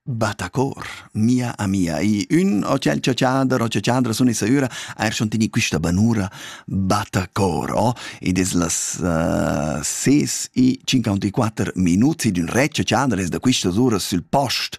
Battacor, mia amia, i ün o tschel chatschader o chatschadra sun esa üra eir schon teni quista banura Battacor o ed es las uh, ses e cinquantaquatter minuts ed ün re chatschader es da quistas uras sül post.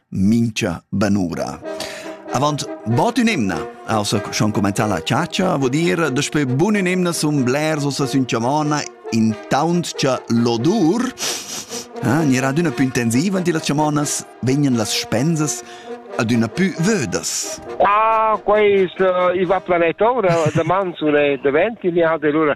mincha banura. Avant bod ün'emna ha ussa schon cumanzà la chatscha, vuol dir daspö bun ün'emna sun blers ussa sün chamona intaunt cha l'odur ah, gnirà adüna pü intensiv ant illas chamonas, vegnan las spensas adüna pü vödas. Ah, quais uh, i va planet ora, da manzule, da ventili, ha de lura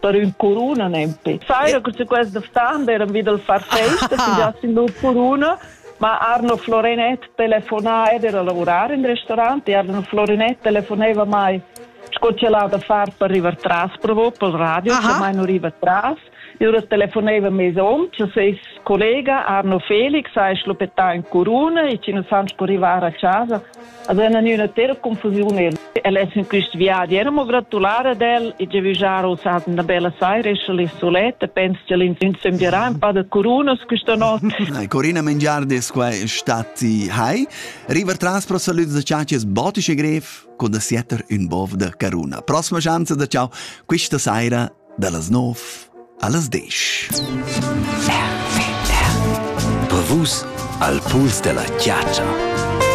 per ün curuna nempe. Faira cun quest d'ftan deran vi dal far festa, si già sin lur curuna, ma Arno Florenet telefonà ed era lavorar in restaurant e Arno Florenet telefoneva mai sco ch'el ha da far per rivar tras provo pel radio, che mai non riva tras. Ora telefoneva mes hom, che seis collega Arno Felix ha schlupettà in curuna e che non san sco rivar a casa Ad ena gnüna tera confusiun er. El es in quist viadi era mo gratular ad el e giavüschar uss hat üna bella saira e scha lì suletta pens cha l'infant sembierà ün pa da curunas questa not. Corina Mengiardes qua statti hai. River tras pro salüts da ciacias botisch e grev co da sietter ün bov da caruna. Prossima schanza da ciao quista saira dallas 9 allas 10. Per vus al puls della ciacia.